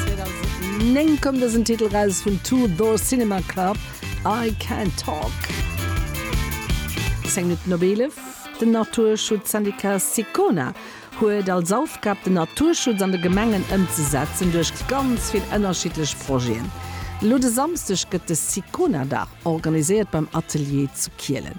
2009 koum dësen Titel raus vun Two Door Cinema Club, I Can't Talk. Zéng Minutten op eelef. Den Naturschutzsyndicat Sicona huet als Aufgab, den Naturschutz an de Gemengen ëmzesetzen duerch ganz vill ënnerschiddlech Projeten. Elo de Samsdeg gëtt de Sicona-Dag organiséiert beim Atelier zu Kielen.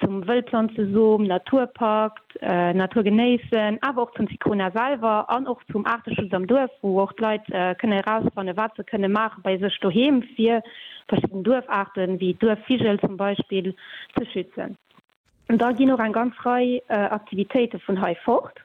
zum Wëllplanzesom, Naturpakt, Natur genéissen, awer och zum Sicona selwer an och zum Aarteschutz am Duerf, wou och d'Leit kënne erausfanne wat se kënne maache bei sech doheem, fir verschidden Duerfaarte wéi Duerfvigel zum Beispill ze schützen. Da ginn och eng ganz Rei Aktivitéite vun hei fort.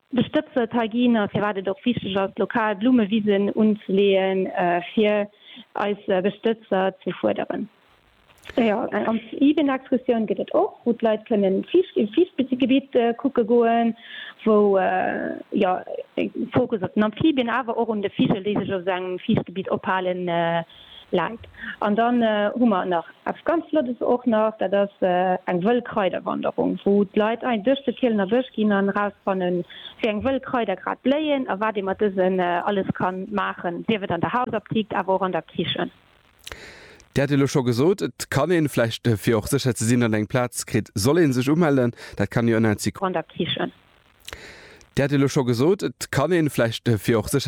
De Stëbsel Ty Giener, firwat et och wichteg ass, lokal Blummewisen unzeleeën, fir eis Bestëtzer ze fuerderen. Jo, eng Amphibienexkursioun gëtt et och, wou d'Leit kënnen e Fiichtgebitt kucke goen, wou jo e Fokus op den Amphibien, awer och un de Vigel, déi sech op esou engem Fiichtgebitt ophalen, läit. An dann hu mer nach eppes ganz Flottes och nach, dat ass eng wëll Kraiderwanderung, wou d'Leit ein duerch de Kielener Bësch ginn an erausfannen, wéi eng wëll Kraider grad bléien a wat ee mat dësen alles kann maachen, sief et an der Hausaptikt, awer och an der Kichen. Dir hat elo scho gesot, et kann een, vläicht fir och sécher ze sinn, datt een eng Plaz kritt, soll een sech umellen. Dat kann jo. An der Kichen. Dir hat elo scho gesot, et kann een, vläicht fir och sécher.